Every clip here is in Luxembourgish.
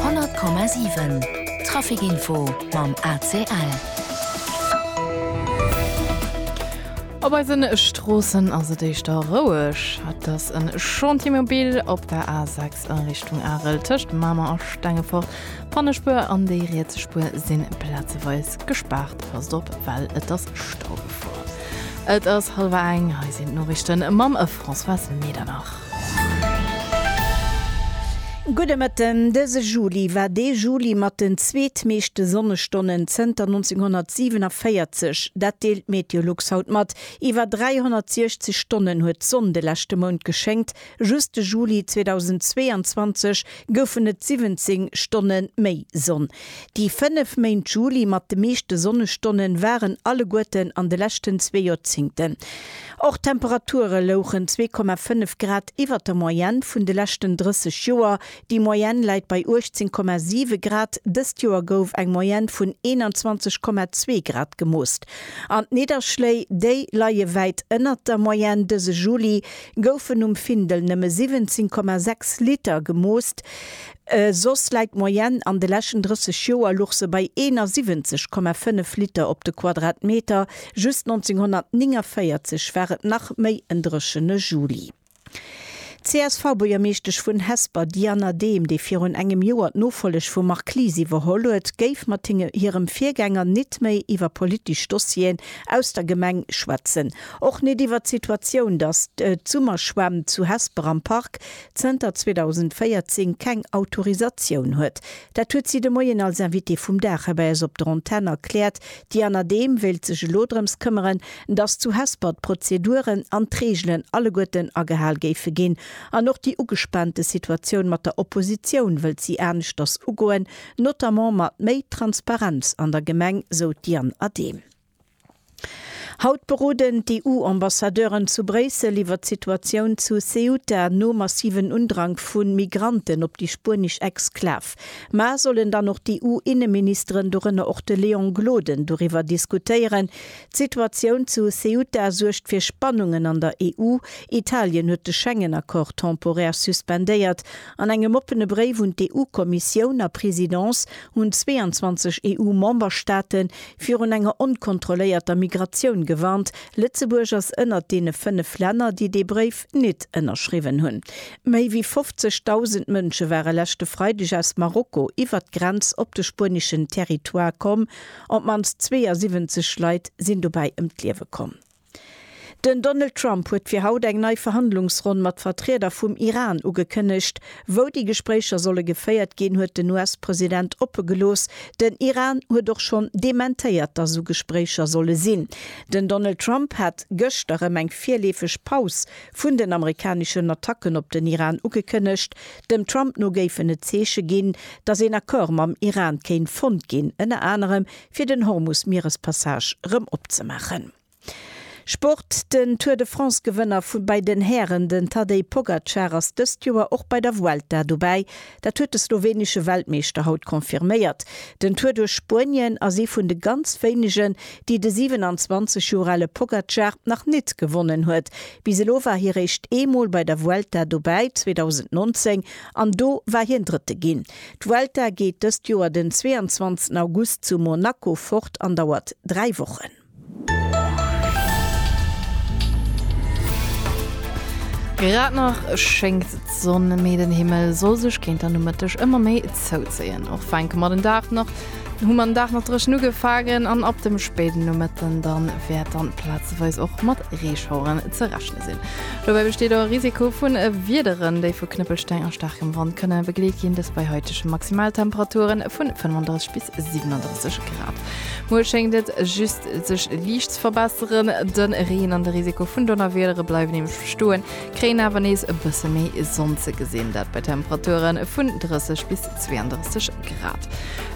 100,7 Trafic Info mam ACL. Op eise Stroossen ass et éischter roueg. Et ass e Chantier mobil op der A6 a Richtung Arel tëscht Mamer a Stengefort. D'Pannespuer an déi riets Spuer si plazeweis gespaart. Passt op, well et ass Stau gefuer. Et ass hallwer eng. Hei sinn d'Noriichte mam. Françoise Medernach. Gudde Mëtten, Dëse Juli war dee Juli mat den zweetmeeschte Sonnestonnen zënter 1947. Dat deelt d'Meteolux haut mat. Iwwer 360 Stonnen huet d'Sonn de leschte Mount geschéngt. Just de Juli 2022 goufen et 17 Stonne méi Sonn. Déi fënnef Méint Juli mat de meeschte Sonnestonne waren alleguerten an de leschten zwee Joerzéngten. Och d'Temperature louchen 2,5 Grad iwwer der Moyenne vun de leschten 30 Joer. Déi Moyenne läit bei 18,7 Grad. Dëst Joer gouf eng Moyenne vun 21,2 Grad gemoosst. An d'Nidderschléi, déi leie wäit ënnert der Moyenne. Dëse Juli goufen um Findel nëmme 17,6 Liter gemoosst. Soss läit d'Moyenne an de leschten 30 Joer luch se bei 71,5 Liter op de Quadratmeter, just 1949 war et nach méi en dréchene Juli. D'CSV-Buergermeeschtesch vun Hesper Diana Dehm, déi virun engem Joer d'Nofolleg vum Marc Lies iwwerholl huet, géif mat hirem Virgänger nit méi iwwer politesch Dossieren aus der Gemeng schwätzen. Och nit iwwer d'Situatioun, datt d'Summerschwämm zu Hesper am Park zënter 2014 keng Autorisatioun huet. Dat huet si de Moien als Invitée vum Dag hei bei eis op der Antenn erkläert. Déi Anadeem wéilt sech elo drëms këmmeren, dass zu Hesper d'Prozeduren an d'Reegelen alleguerten agehal géife ginn. An och déi ugespaante Situatioun mat der Oppositioun wëllt si aneschters ugoen, notamment mat méi Transparenz an der Gemeng, sou d'Diane Adehm. Haut beroden d'EU-Ambassadeuren zu Bréissel iwwer d'Situatioun zu Ceuta nom massiven Undrank vu Migranten op déi spuenesch Exklav. Mar sollen dann och d'EU-Inneministeren, dorënner och de Léon Gloden, doriwwer diskutéieren? D'Situatioun zu Ceuta suergt fir Spannungen an der EU. Italien huet de Schengen-Accord temporär suspendéiert. An engem oppene Bréif un d'EU-Kommissioun a Presidence hunn 22 EU-Memberstaaten virun enger onkontrolléierter Migratioun gewarnt. Lëtzebuerg ass ënnert deene fënnef Länner, déi dee Bréif nit ënnerschriwwen hunn. Méi wéi 50.000 Mënsche ware leschte Freideg aus Marokko iwwert d'Grenz op de spueneschen Territoire komm. Op d'mannst 72 Leit sinn dobäi ëm d'Liewe komm. Den Donald Trump huet fir haut eng nei Verhandlungsronn mat Vertrieder vum Iran ugekënnegt. Wou déi Gespréicher solle geféiert ginn, huet den US-President oppe gelooss. Den Iran huet och schonn dementéiert, datt esou Gespréicher solle sinn. Den Donald Trump hat gëschter erëm eng virleefeg Paus vun den amerikaneschen Attacken op den Iran ugekënnegt. Dem Trump no géifen et Zeeche ginn, datt een Accord mam Iran kéint fonnt ginn, ënner anerem fir den Hormus-Mierespassage rëm opzemaachen. Sport, Den Tour de France-Gewënner vu bei den Hären, den Tadej Pogacar, ass dëst Joer och bei der Vuelta dobäi. Dat huet de slowenesche Weltmeeschter haut confirméiert. Den Tour duerch Spuenien ass ee vun de ganz wéinegen, déi de 27 Joer ale Pogacar nach nit gewonnen huet. Bis elo war hie réischt eemol bei der Vuelta dobäi, 2019, an do war hien Drëtte ginn. D'Vuelta geet dëst Joer den 22 August zu Monaco fort an dauert 3 Wochen. Grad nach schéngt d'Sonn, mee den Himmel soll sech géint der Nomëtteg ëmmer méi zouzéien. Och fänke mer den Dag nach Hu mer den Dag nach dréchen ugefaangen an ab dem spéiden Nomëtten dann wäert dann plazeweis och mat Reeschaueren ze rechne sinn. Dobäi besteet och e Risiko vun Wiederen, déi vu Knëppelsteng a staarkem Wand kënne begleet ginn, dëst bei haitege Maximaltemperature vu 35 bis 37 Grad. Muer schéngt et just sech liicht ze verbesseren, de Reen an de Risiko vun Donnerwiedere bleiwen nämlech bestoen. Kréien awer nees e bësse méi Sonn ze gesinn, dat bei Temperature vun 30 bis 32 Grad.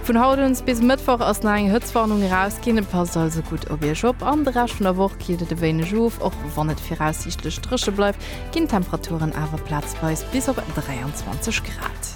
Vun haut un bis Mëttwoch ass nach eng Hëtztwarnung erausginn, passt also gutt op Iech op. An de Rescht vun der Woch killt et e wéineg of, och wann et viraussiichtlech dréche bleift, ginn d'Temperaturen awer plazweis bis op 23 Grad.